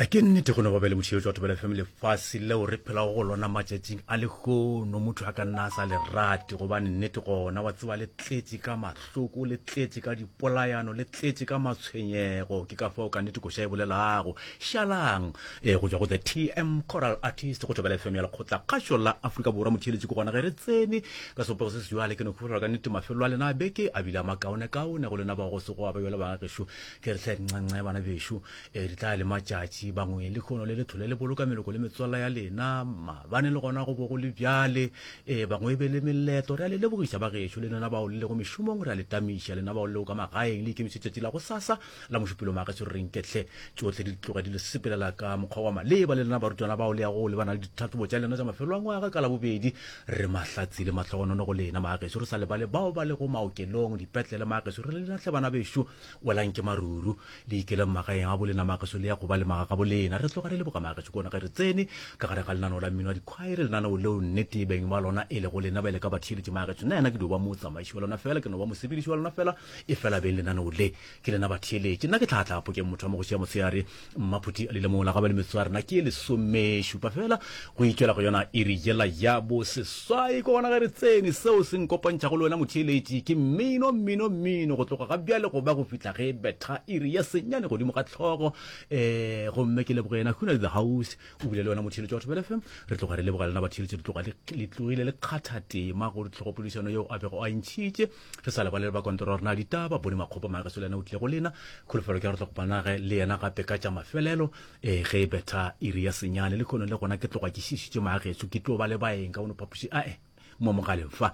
a ke nnete go ne go be le motšheletso wa thobela fm lefase leo re phelago go lona matšatšing a lehono motho a ka nna a sa le rate gobane nnete gona wa tseba le tletše ka mahloko le tletše ka dipolayano le tletše ka matshwenyego ke ka fao ka nnete koša e bolelago šalang e go tswa go the tm coral artist go thobela fm ya lekgotla kgašo la afrika borwa motšheletsi ko gona ge re tsene ka sopego se sejwale ke ne kgofelwa ka nnete mafelo a lena a beke a bile a makaonekaone go lena ba go se go abebele bangagešo Ke re hle nxenxe bana bešo, e di tla le matšatši, bangwe le khono le le thole le boloka meloko le metswalla ya lena, mabane le gona go bo go le bjale, e bangwe e be le meleto, re a le lebogiša ba gešo, le lena bao le lego mešomong, re a le tamiša, lena bao le lego ka magaeng, le ikemišetše tšatši la gosasa la mošupelo mageso, re reng ke hle, tšohle di tloge di le sepelela ka mokgwa wa maleba, le lena barutwana bao le ya go lebana le ditlhahlobo tša lena tša mafelo a ngwaga ka labobedi, re mahlatsi le mahlogonono go lena mageso, re sa lebale bao ba lego maokelong, dipetlele mageso, re le lena hle bana bešo, Welang ke maruru, le ikeleng magaeng a bolena magaso le ya go ba le magaga bolena. Re tloga re le boga magaso kona ge re tsene ka gare ga lenaneo la mmino wa dikhwaere, lenaneo leo nnete beng ba lona e lego lena bjale ka batheeletši magaso. Nna yena ke dio ba motsamaiši wa lona fela, ke no ba mosepediši wa lona fela, efela beng lenaneo le ke lena batheeletši. Nna ke tlhaha tlhaha phokeng motho wa mogoši ya motshegare, mmaphuti a lile mola ga ba le metso a rena ke lesomešupa fela go itšwela go yona e re yela ya bo seswai ko gona ge re tsene seo se nkopantšhago le wena motheeletši ke mmino mmino mmino go tloga ga bjale go ba go fihla ge betha e re ya senyane godimo ga tlhogo um gomme ke leboge yena huna the house o bile le wena motheeletši wa thobele fm re tloga re leboga lena batheeletši re tloga le tlogile le kgatha tema gore tlhogopodišano yeo a bego a ntšhitše Re sa lebale le ba kontora gore na ditaba bone makgopa mageso le yena o tlile go lena. Kholofelo ke ya gore tlo kopanage le yena gape ka tša mafelelo ee ge e betha iri ya senyane. Le kgono le gona ke tloga ke šišitše mageso ke tlo ba le baeng ka bono phapoši ae mo mogaleng fa.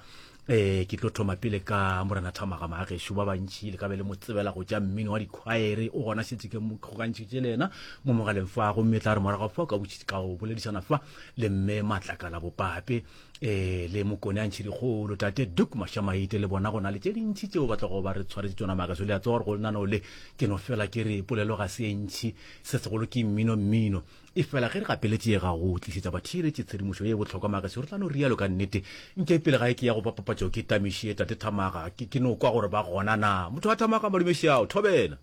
Ee ke tlo thoma pele ka Morena Thamaga mageso ba bantši le ka be le mo tsebela go tša mmino wa dikhwaere o gona šetse ke kgokantšhitše le yena mo mogaleng fa gomme tla re morago fa o ka boledišana fa le mme Matlakala Bopape ee le mokone a ntšhedikgolo tate duk mašamaite le bona go na le tše dintšhi tšeo ba tlogo ba re tshwaretse tsona maka so le a tsewa gore go lenano le ke no fela ke re polelo ga se e ntšhi se segolo ke mmino mmino e fela ge re gapeletše ye ga go tlišetša batheeletše tshedimošo ye e bohlokwa maka so re tla no rialo ka nnete nke pele ga e ke ya go ba papatšo ke tamišie tate thamaga ke no kwa gore ba gona na motho a thamaga malumešiao thobela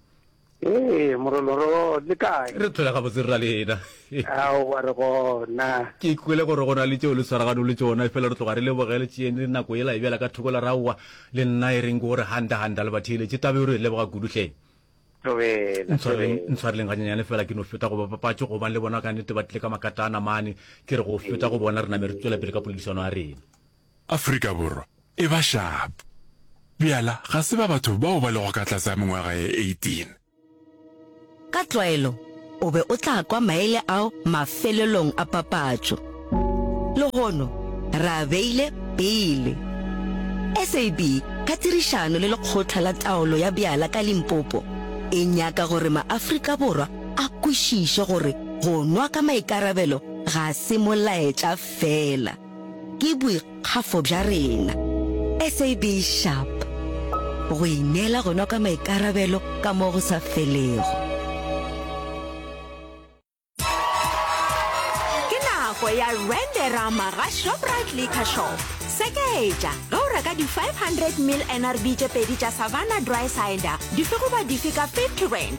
Ee, Morolo, re gona, le kae? Re tlhola gabotse, rra Lena. Aowa, re gona. Ke kwele gore go na le tšeo le tshwaraganong le tšona, efela re tloga re lebogele tšeeng le nako yela e bjala ka thoko la re, Aowa, le nna e reng ke gore handa, handa, le ba theeletše. Taba yeo re e leboga kudu, hle. Tobela, Ntshwareleng, tobela. ntshwareleng ganyenyane fela, ke no feta go bapapatšo, gobane le bona ka nnete ba tlile ka makatana mane. Ke re go feta go bona, re name re tšwela pele ka poledišano ya rena. Afrika Borwa e ba shapo. Bjala ga se ba batho bao ba lego ka tlase ga mengwaga ye 18. Ka tlwaelo o be o tla kwa maele ao mafelelong a papatšo. Lehono re a beile pele. SAB ka tirišano le Lekgotla la Taolo ya Bjala ka Limpopo e nyaka gore maAfrika Borwa a kwešiše gore go nwa ka maikarabelo ga se molaetša feela. Ke boikgafo bja rena SAB Sharp go ineela gona ka maikarabelo ka mo go sa felego. Ke nako ya Rand-erama ga Shoprite Liquor Shop. Sekeetša, ge o reka di 500 ml NRB tše pedi tša Savanna Dry Cider, dife goba dife ka 50 Rand,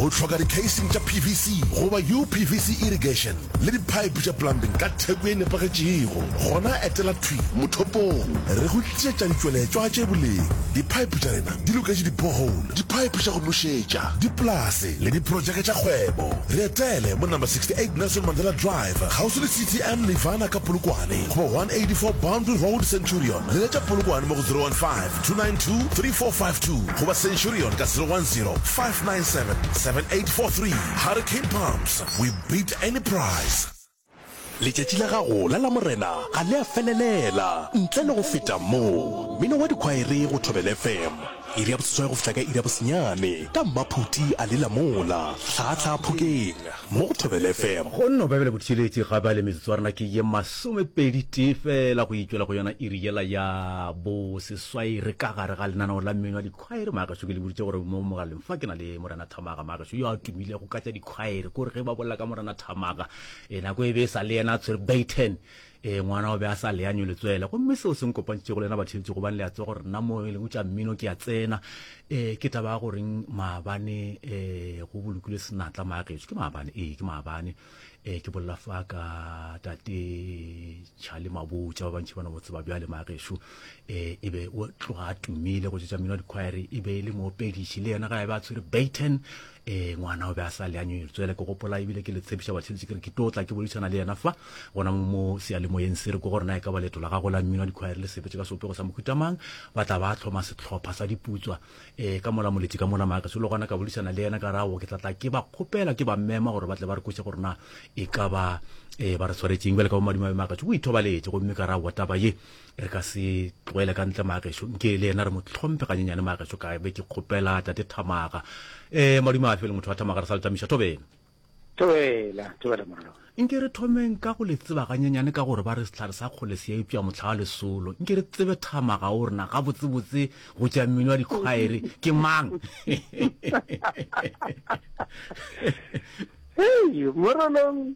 O hloka dikheising tša PVC goba UPVC irrigation le diphaephe tša plumbing ka theko e nepagetšego? Gona etela thwi mothopong re go tlišetša ditšweletšwa tše boleng. Diphaephe tša rena di loketše di-borehole, diphaephe tša go nošetša, dipolase le diprotšeke tša kgwebo. Re etele mo Number 68 Nelson Mandela Drive, kgauswi le CTM Nirvana ka Polokwane, goba 184 Boundary Road, Centurion. Leletša Polokwane mo go 015 292-3452 goba centurion ka 010-597-7843 Hurricane Pumps, we beat any price. Letšatši la gago la Lamorena ga le a felelela. Ntle le go feta moo, mmino wa dikhwaere go Thobela FM, iri ya boseswai go fihla ka iri ya bosenyane, ka mmaphuti a lela mola, hlaga hlaga phokeng. mo go Thobela FM. Go nno Baebele Botšweletši ga bale metsotso ya rena ke ye masomepedi tee fela go itšwela go yona iri yela ya boseswai re ka gare ga lenaneo la mmino wa dikhwaere magašo ke le boditše gore mo mogaleng fa ke na le Morena Thamaga magašo yo a tumilego ka tša dikhwaere kore ge ba bolela ka Morena Thamaga e nako e be e sa le yena a tshwere Bayton ee ngwana o be a sa leanywe letswele gomme seo se nkopantšego le yena batheetsi gobane le a tse gore nna mo e leng tša mmino ke a tsena um ke taba ya goreng maabane um go bolokile senatla maagetso ke maabane ee ke maabane um ke bolela fa ka tate chale mabotsa ba bantšhi ba no botse ba bjale maageso um e be o tloga a tumile go tšetša mmino wa dikhwaere e be e le moopediši le yena ga e be a tshwere baton ee ngwana o be a sa le a nyonyoletswele ke gopola ebile ke le tshepiša batheletši ke re ke tlo tla ke boledišana le yena fa gona mo seyalemoyeng se re ko gore na e ka ba leeto la gago la mmino wa dikgwaere le sepetše ka seopego sa mohutamang ba tla ba tlhoma setlhopha sa diputswa um ka mola moletši ka mola maaka solo gona ka boledišana le yena ka rago ke tla tla ke ba kgopela ke ba mmema gore ba tle ba re kweše gore na e ka ba um ba re tshwaretšeng bjale ka bomadimabe maaka tšo o ithobaletše gomme ka ra wa taba ye re ka se tloele ka ntle mageso nke le yena re mo tlhomphe ganyenyane mageso ka be ke kgopela tate thamaga um madume a fe le motho wa thamaga re sa le tamiša thobela thobela thobela moralo nke re thomeng ka go le tseba ganyenyane ka gore ba re setlhare sa kgole se ya ipša motlha wa lesolo nke re tsebe thamaga o rena gabotsebotse go tša mmino wa dikgwaere ke mang morolong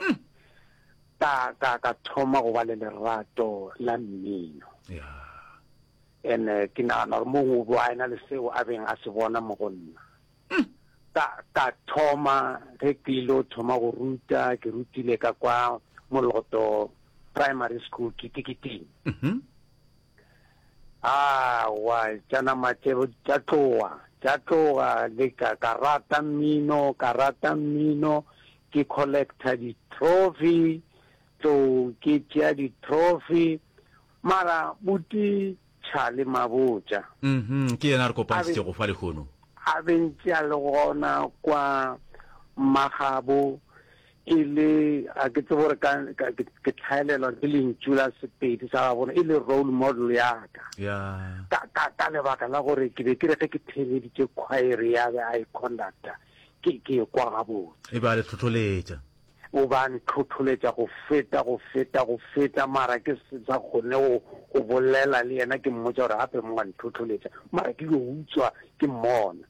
Mm. Ka, ka, ka thoma go ba le lerato la mmino. Ya. And eh, ke nagana gore mongwe o bo a ena le seo a beng a se bona mo go nna. Mm. Ka, ka thoma, ge ke ile o thoma go ruta, ke rutile ka kwa Moloto Primary School, Kitikiting. Mhm. awa tša nama tše tša tloga tša tloga le ka ka rata mmino ka rata mmino ke collector di trophy, tlou ke tšea di trophy, mara buti Charlie Mabotja, Mhm, ke yena a re kopantšitšego fa lehono. a be ntše a le gona kwa Mmagabo, e le, ga ke tsebe gore ka, ka, ke, ke tlhaelelwa ke lentšu la Sepedi sa gabona, e le role model ya ka, Ya, ka, ka, ka lebaka la gore ke be ke re ge ke theeleditše khwaere ya be a e conductor, ke, ke ekwa gabotse. E be a le tlhotholetša. O be a ntlhotholetša go feta, go feta, go feta, mara ke se sa kgone go, go bolela le yena, ke mmotša gore gape mo wa ntlhotholetša, mara ke yo utswa ke mmona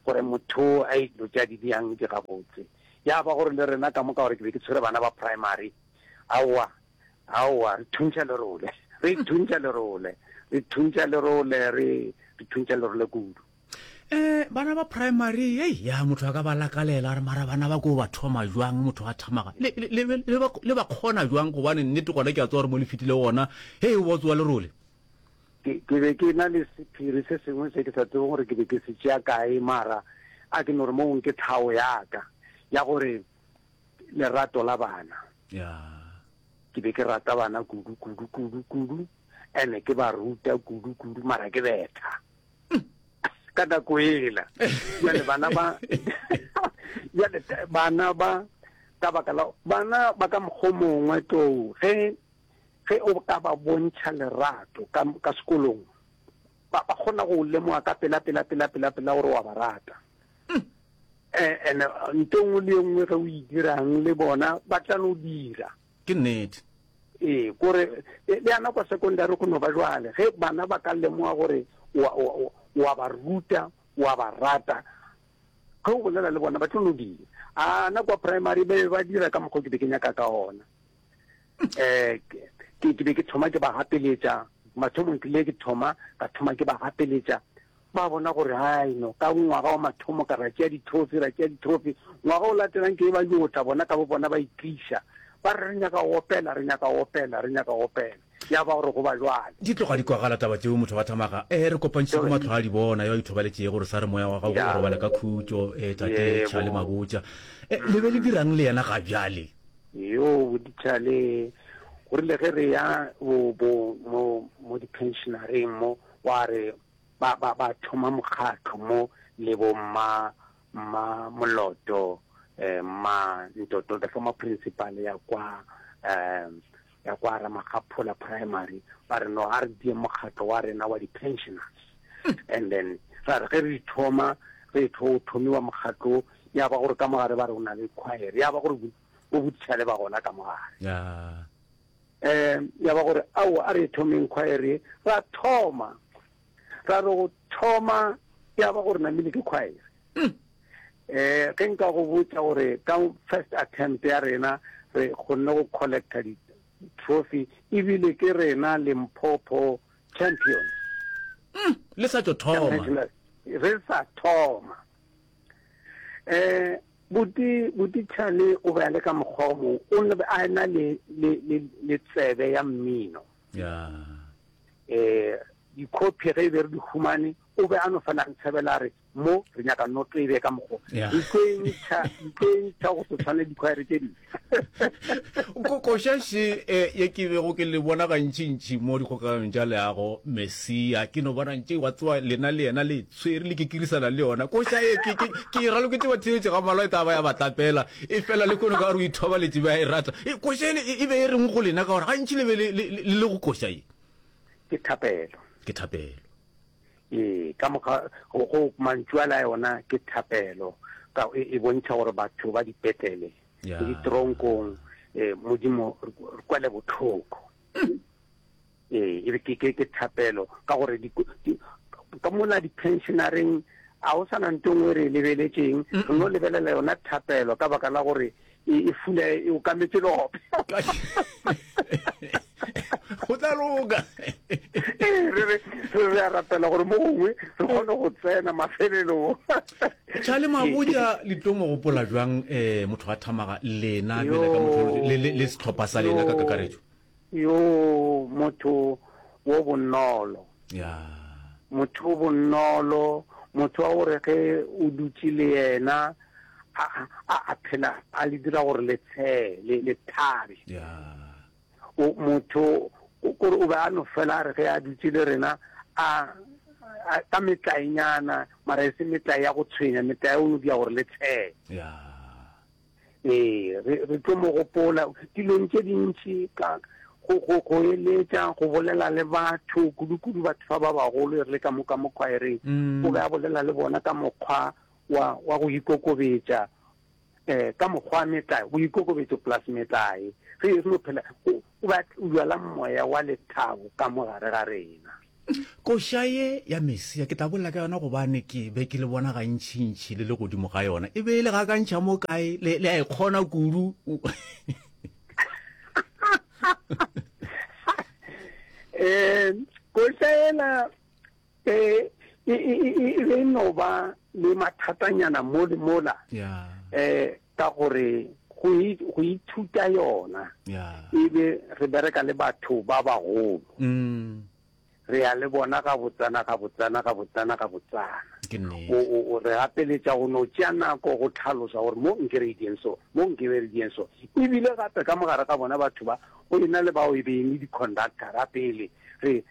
gore motho o a e tša di bjang di gabotse. Ya ba gore le rena ka moka gore ke be ke tshwere bana ba primary, aowa, aowa, re thuntša lerole, re thuntša lerole, re thuntša lerole, re, re thuntša lerole kudu. um bana ba primary ei ya motho a ka ba lakalela re mara bana ba ko ba thoma jwang motho a thamaga le, le, le, le, ba, le ba kgona jwang gobane nnete gona ke a tsewa gore mo le fetile gona hei o ba tsewa lerole ke ke be ke na le sephiri se sengwe se ke sa tsebeng gore ke be ke se tšea kae mara a ke no re mong ke tlhago yaka ya gore lerato la bana ya ke be ke rata bana kudu kudu kudu kudu ene ke ba ruta kudu kudu mara ke betha ka nako ela jale bana ba jale bana ba ka baka la bana ba ka mokgwa mongwe tlou ge ge o ka ba bontšha lerato ka ka sekolong ba ba kgona go lemoga ka pela pela pela pela pela gore wa ba rata um ene nto nngwe le nngwe ge o e dirang le bona ba tla no dira Ke nnete. Ee, ko re, le, le ana kwa sekondari go no ba jwale, ge bana ba ka lemoga gore wa, wa, wa, wa ba ruta, wa ba rata, ge o bolela le bona ba tlo no dira. Ana kwa primary ba be ba dira ka mokgwa o ke be ke nyaka ka ona. Eh, ke, ke be ke thoma ke ba gapeletša, mathomong ke le ke thoma, ka thoma ke ba gapeletša, Ba bona gore, Haeno, ka ngwaga wa mathomo ka ra tšea dithofi, ra tšea dithofi, ngwaga o latelang ke eba yo tla, bona ka bobona ba itliša, ba re, Re nyaka go opela, re nyaka go opela, re nyaka go opela. Ya ba gore go ba bjale. Di tloga di kwagala taba tšeo, motho wa thamaga, Ee, re kopantšhitše go mahlo a dibona, yo a ithobaletšego, re sa re moya wa gago o robale ka khutšo, ee, tate, tšha le mabotša. Ee, le be le dira'ng le yena ga bjale? Yo boditšha le go rile ge re ya bo, bo, mo, mo diphenšenareng mo, wa re, ba, ba, ba thoma mokgatlo mo, le bo mma, mma Moloto, eh, mma Ntoto, the former principal ya kwa, um, ya kwa Ramagaphola Primary, ba re no, a re die mokgatlo wa rena wa di-pensioners. And then, ra re ge re thoma, re tho thomiwa mokgatlo, ya ba gore ka mogare ba re o na le choir, ya ba gore bo, bo bothišale ba gona ka mogare. Yeah. Um, ya ba gore, aowa, a re thomeng khwaere ye. Ra thoma, ra re go thoma, ya ba gore namile ke khwaere. Um, ge nka go botsa gore ka first attempt ya rena, re kgonne go collecta di trophy ebile ke rena limpopo champion mm, le sa tšo thoma re sa thoma eh buti buti chale o be a le ka mokgwa o mong o ne a na le le le tsebe ya mmino ya eh di copy re be re di humane o be a no fana re tshabela re mo re nyaka noto e be ka mokgwa di tlo e ntsha di tlo e ntsha go se tshwane di khwaere tse dingwe kokoša še e, ye ke bego ke le bona gantšintši mo dikgokaganong tša leago mesia ke no bona ntše wa tsewa lena le yena le tshwere le kikirisana le yona koša e ke e raloketse batheetše ga malwa e ka ba ya batlapela e fela le kone ka gore o ithobaletše ba e rata e, koša ele e be e reng go lena ka gore gantši le be le le go koša e ke thapelo ke thapelo Ee, ka moka go, go mantšu a la yona ke thapelo ka e, e bontšha gore batho ba dipetlele yeah. le ditronkong eh, modimo re kwele botlhoko ee e ke ke ke thapelo ka gore ka mola di-pensionareng a o sana nto ngwe re e lebeletseng re no lebelela yona thapelo ka baka la gore e, e fula e okametše lope go tla loka ee, re re re a rapela gore mo gongwe re kgone go tsena mafelelong tša le mabotja litomo gopola jwang um motho wa thamaga lena le setlhopha sa lena ka kakaretso Yo motho wo bonolo. Yeah. Motho o bonolo, motho wa gore ge o dutše le yena a a a phela a le dira gore le tshele le thabe. Yeah. O motho gore o be a no fela re ge a dutše le rena a ka metlaenyana mara e se metlae ya go tshwenya metlae o no dira gore le tshele. Yeah. Ee, re, re tlo mo gopola dilong tše dintši, ka go, go, go eletša, go bolela le batho, kudu-kudu batho fa ba bagolo, e re le ka moka mo khwaereng. Mm. O be a bolela le bona ka mokgwa wa, wa go ikokobetša, eh, ka mokgwa metlae, go ikokobetša plus metlae. Re, re no phela, go, O be a tloujwala moya wa lethabo ka mo gare ga rena. Koša ye ya Mesia, ke tla bolela ka yona gobane ke be ke le bona gantšintši le le godimo ga yona, e be e le gakantšha mo kae, le, le a e kgona kudu. um Koša yela e, e, e, e, e be e no ba le mathatanyana mo le mola. Yeah. um ka gore go e go ithuta yona e be re bereka le batho ba bagolo mm. re ya le bona ga botsana ga botsana ga botsana ga botsana re gapeletša go no tšea nako go tlhalosa gore mo nke re dieng so mo nke be re dieng so ebile gape ka mogare ga bona batho ba go e na le bao e beng le di-conductora pele re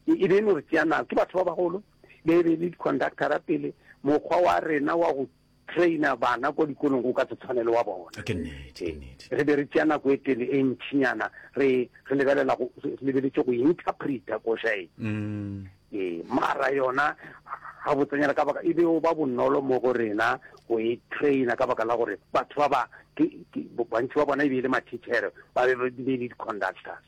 e beno re tšea nako ke batho ba bagolo be e be le di-conductora pele mokgwa wa rena wa go traina bana kwa dikolong go ka se tshwane le wa bona. Ke nnete, ke nnete. Re be re tšea nako e tele e ntšhinyana re re lebelela go re lebeletše go interpreta koša e. Mm. Ee, mara yona ga botsenyana ka baka e be o ba bonolo mo go rena go e traina ka baka la gore batho ba ba ke ke- bo- bantši ba bona e be e le mathichere ba be ba di be e le di-conductors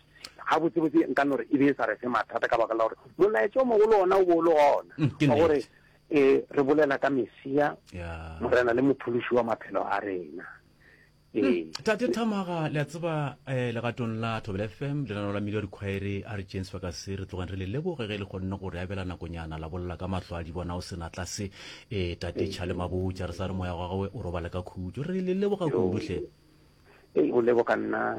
ga botsebotse nka no re e be e sa re fe mathata ka baka la gore molaetša o mogolo ona o bo o le ona Mm, ke wa gore nnete. E re bolela ka Mesia, Morena le Mophološi wa maphelo a rena. Hmm. tate thamaga le a tseba um legatong la thobela fm lenano la melio dikhwaere a re james fakase re tlogeng re le leboge ge le kgonne go re abela nakonyana la bolela ka mahlo a di bona o sena tlase um tate ee. chale mabotja re sa re moya wa gawe o robale ka khutso re le leboga kudutlhe ee o leboga nna